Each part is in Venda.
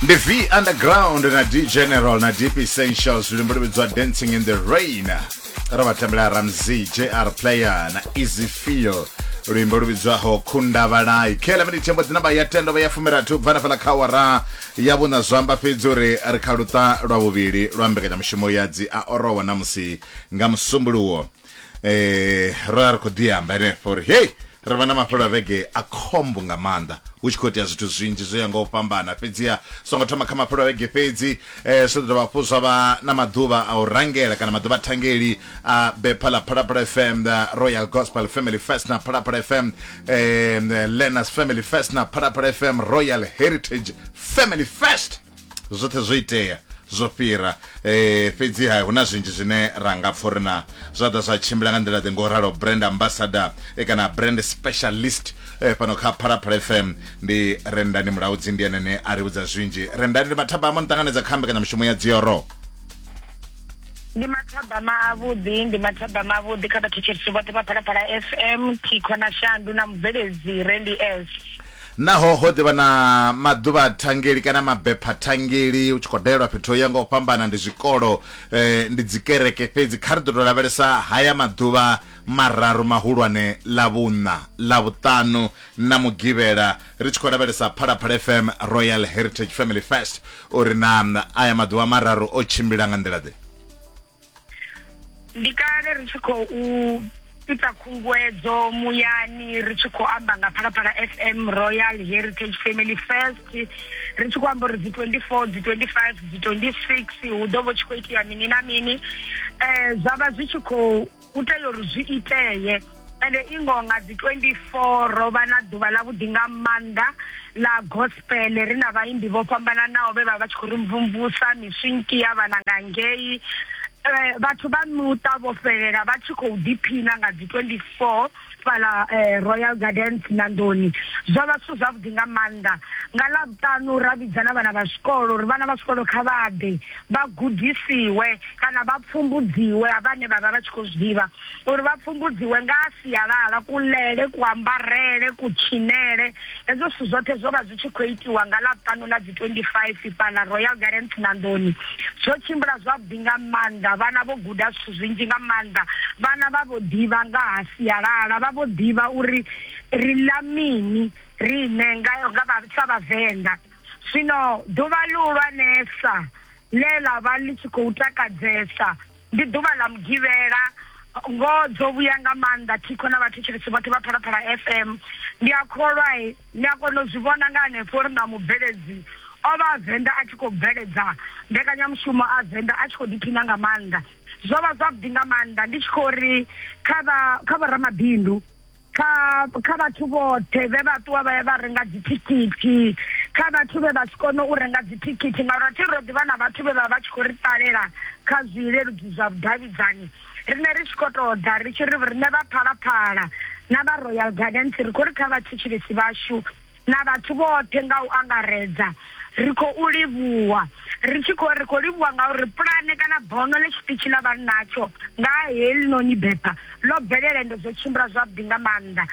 ndi v underground na d general na deep essentials luimbo lu vhidzwa dancing in the rain ro vha tambela ramsey jr player na easy feel luimbo lu vhidzwaho khundavalai khela mini thembo dzina vha ya tendo vha ya fumirathi u bva na fhala kha awara ya vhuṋa zwa amba fhedzi uri ri kha luṱa lwa vhuvhili lwa mbekanyamushumo ya dzi a orowa na musi nga musumbuluwo eh ro vha ri khou ḓi amba henefho uri hei ri vha na mafhelo a vhege a khombo nga maanḓa hu tshi khou itea zwithu zwinzhi zwo ya nga u fhambana fhedziha songo thoma kha mafhelo a vhege fhedzi um zwi ḓo dovha hafhu zwa vha na maḓuvha a u rangela kana maḓuvha a thangeli a bepha ḽa phalaphala fm the royal gospel family fest na phalaphala fm um learners family fest na phalaphala fm royal heritage family fest zwoṱhe zwo itea zwo fhira eh fhedziha hu na zwinzhi zwine ra nga pfha uri na zwa ḓa zwa tshimbila nga nḓila ḓe ngo ralo brand ambassador eh, kana brand specialist eh, fhano kha phalaphala fm ndi rendani mulaudzi ndi ene ne a ri vhudza zwinzhi rendani ndi mathabama ni ṱanganedza kha mbekanyamushumo ya dzioro ndi mathabama avhuḓi ndi mathabama avhuḓi kha vhathetshelisi vhoṱhe vha phalaphala fm thikho na shandu na mubveledzi rendi s Naho ho ḓi vha na maḓuvhathangeli kana mabephathangeli hu tshi khou dalelwa fhethu ho yaho nga u fhambana, ndi zwikolo, ndi dzikereke fhedzi, kha ri ḓo tou lavhelesa haya maḓuvha mararu mahulwane, Ḽavhuṋa, Ḽavhuṱanu na Mugivhela, ri tshi khou lavhelesa Phalaphala FM Royal Heritage Family Fest uri naa aya maḓuvha mararu o tshimbila nga nḓila-ḓe. ndi kale ri tshi khou ita khunguwedzo muyani ri tshi khou amba nga phalaphala fm royal heritage family first ri tshi khou amba uri dzi 24 dzi 25 dzi 26 hu ḓo vho tshi khou itea mini na mini um zwa vha zwi tshi khou u tea uri zwi itee ende i ngoho nga dzi 24 ro vha na ḓuvha ḽa vhuḓi nga maanḓa ḽa gospel ri na vhaimbi vho fhambananaho vhe vha vha tshi khou ri mvumvusa miswinki ya vhana nga ngei eh, vhathu vha muṱa vho fhelela vha tshi khou ḓiphina nga dzi 24 fhaḽa eh, Royal Gardens Nandoni zwo vha zwithu zwavhuḓi nga maanḓa nga ḽa vhuṱanu ra vhidza na vhana vha zwikolo uri vhana vha zwikolo kha vha ḓe vha gudisiwe kana vha pfumbudziwe vhane vha vha vha tshi khou zwi ḓivha uri vha pfumbudziwe nga sialala kuḽele kuambarele kutshinele Hezwo zwithu zwoṱhe zwo vha zwi tshi khou itiwa nga Ḽavhuṱanu ḽa dzi 25 fhaḽa Royal Gardens Nandoni. Zwo tshimbila zwavhuḓi nga maanḓa, vhana vho guda zwithu zwinzhi nga maanḓa. Vhana vha vho ḓivha nga ha sialala, vha vho ḓivha uri ri ḽa mini riṋe nga sa Vhavenḓa. Zwino ḓuvha ḽihulwanesa ḽe ḽa vha ḽi tshi khou takadzesa, Ndi ḓuvha ḽa Mugivhela. Ngoho dzo vhuya nga maanḓa Thikho na vhathetshelesi vhoṱhe vha Phalaphala FM. Ndi a kholwa ni a kona u zwi vhona nga hanefho uri na mubveledzi o vha a Venḓa a tshi khou bveledza mbekanyamushumo a Venḓa a tshi khou ḓiphina nga maanḓa. Zwo vha zwavhuḓi nga maanḓa ndi tshi khou ri kha vha kha vho ramabindu kha kha vhathu vhoṱhe vhe vha ṱuwa vha ya vha renga dzithikhithi kha vhathu vhe vha si kone u renga dzithikhithi ngauri athi ro ḓivha na vhathu vhe vha vha tshi khou ri ṱalela kha zwileludzi zwa vhudavhidzani rine ri tshi khou tou ḓa ri tshi ri riṋe vha phalaphala na vha royal gardens ri khou ri kha vhathetshelesi vhashu na vhathu vhoṱhe nga u angaredza ri khou livhuwa ri tshi khou ri khou livhuwa ngauri pulane kana bono ḽe tshiṱitshi ḽa vha natsho nga helinoni bepha ḽo bvelela ende zwo tshimbila zwavhuḓi nga maanḓa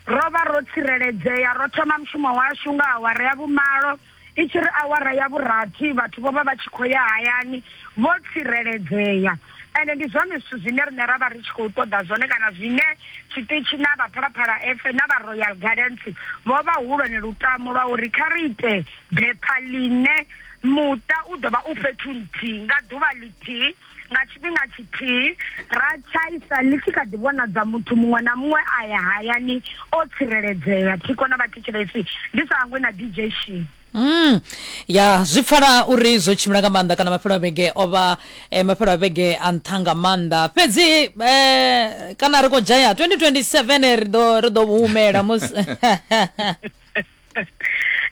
ro vha ro tsireledzea ro thoma mushumo washu nga awara ya vhumalo i tshi ri awara ya vhurathi vhathu vho vha vha tshi khou ya hayani vho tsireledzea Ende ndi zwone zwithu zwine riṋe ra vha ri tshi khou ṱoḓa zwone kana zwine tshiṱitshi na vha Phalaphala FM na vha Royal Gardens vho vha hu lwone lutamo lwa uri kha ri ite bepha ḽine muṱa u ḓo vha u fhethu nthihi nga ḓuvha ḽithihi nga tshifhinga tshithihi, ra tshaisa ḽi tshi kha ḓi vhonadza muthu muṅwe na muṅwe a ya hayani o tsireledzea, thikho na vhathetshelesi ndi sa hangwi na DJ Shee. Mm. ya zwi pfala uri zwo tshimbila nga maanḓa kana mafhelo a vhege o vha eh, mafhelo a vhege a nṱha nga maanḓa fhedzi eh, kana ri khou dzhaya 2027 ri ḓo ri ḓo humela musi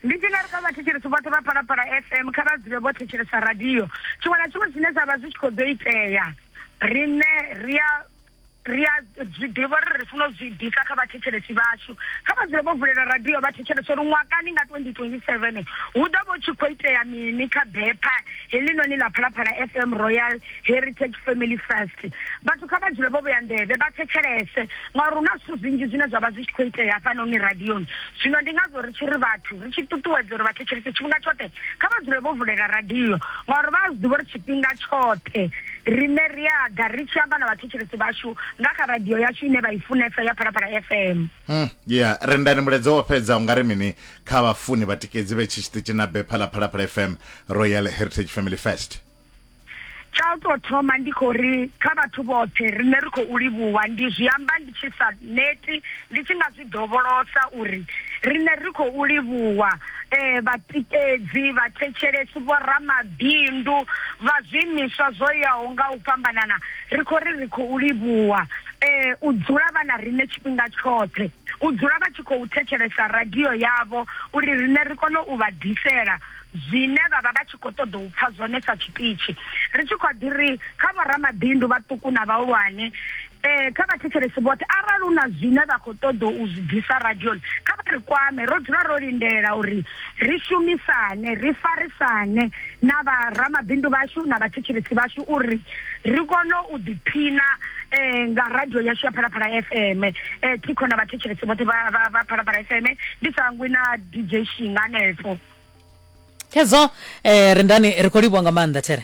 ndi tshi nga ri kha vhathetshelesi vhoṱhe vha palapala fm kha vha dzule vho thetshelesa radio tshiṅwe na tshiṅwe zwine zwa vha zwi tshi khou ḓo itea riṋe ri a ri a zwi ḓivha uri ri funa u zwi ḓisa kha vhathetshelesi vhashu kha vha dzule vho vulela radio vha thetshelesa uri ṅwakani nga 2027 hu ḓo vha u tshi khou itea mini kha bepha heḽinoni ḽa phalaphala fm royal heritage family first vhathu kha vha dzule vho vhea nḓevhe vha thetshelese ngauri hu na zwithu zwinzhi zwine zwa vha zwi tshi khou itea hafhanoni radioni zwino ndi ngazwo ri tshi ri vhathu ri tshi ṱuṱuwedza uri vhathetshelesi tshifhinga tshoṱhe kha vha dzule vho vulela radio ngauri vha a zwi ḓivha uri tshifhinga tshoṱhe Riṋe ri a ḓa ri tshi amba na vhathetshelesi vhashu nga kha radio yashu ine vha i funesa ya Phalaphala FM. Mm, yeah, rendani mulaedza wo fhedza ungari mini kha vhafuni vhatikedzi vhe tshi tshiṱitshi na bepha ḽa Phalaphala FM Royal Heritage Family Fest. Tsha u tou thoma ndi khou ri kha vhathu vhoṱhe riṋe ri khou livhuwa ndi zwi amba ndi tshi sa neti ndi tshi nga zwi dovholosa uri riṋe ri khou livhuwa um vhatikedzi vhathetshelesi vhoramabindu vha zwiimiswa zwo yaho nga u fhambanana ri khou ri ri khou livhuwa um u dzula vha na riṋe tshifhinga tshoṱhe u dzula vha tshi khou thetshelesa radio yavho uri riṋe ri kone u vha ḓisela zwine vha vha vha tshi khou ṱoḓa u pfha zwone sa tshiṱitshi ri tshi khou ḓi ri kha vhoramabindu vhaṱuku na vhahulwane Ee, kha vhathetshelesi vhoṱhe, arali hu na zwine vha khou ṱoḓa u zwi ḓisa radioni, kha vha ri kwame. Ro dzula ro lindela uri ri shumisane, ri farisane na vha ramabindu vhashu na vhathetshelesi vhashu uri ri kone u ḓiphina nga radio yashu ya Phalaphala FM. Thi khou na vhathetshelesi vhoṱhe vha vha vha Phalaphala FM, ndi sa hangwi na DJ Shinga hanefho. Khezwo eh, Rendani ri khou livhuwa nga maanḓa There.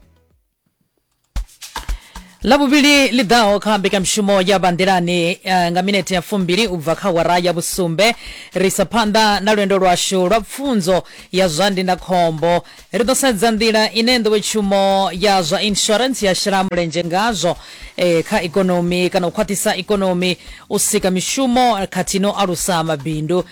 lavhuvhili ḽi ḓaho kha mbekanyamushumo ya vhanḓilani uh, nga minete ya fumbili u bva kha wara ya vhusumbe ri isa phanḓa na lwendo lwashu lwa pfunzo ya zwa ndindakhombo ri ḓo sedza nḓila ine nḓowetshumo ya zwa insurance ya shela mulenzhe ngazwo eh, kha ikonomi kana u khwaṱhisa ikonomi u sika mishumo khathihi no alusa mabindu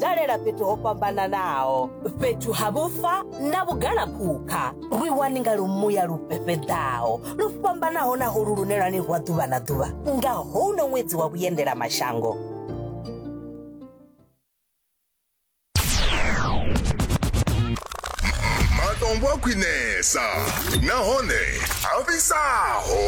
dalela fhethu ho fhambananaho fhethu ha vhufa na vhugalaphukha lwi wani nga lumuya lu fhefheḓaho lu fhambanaho na holu lune lwa ni rwa ḓuvha na ḓuvha nga houno ṅwedzi wa vhuendela mashango matombo a khwinesa nahone a fhisaho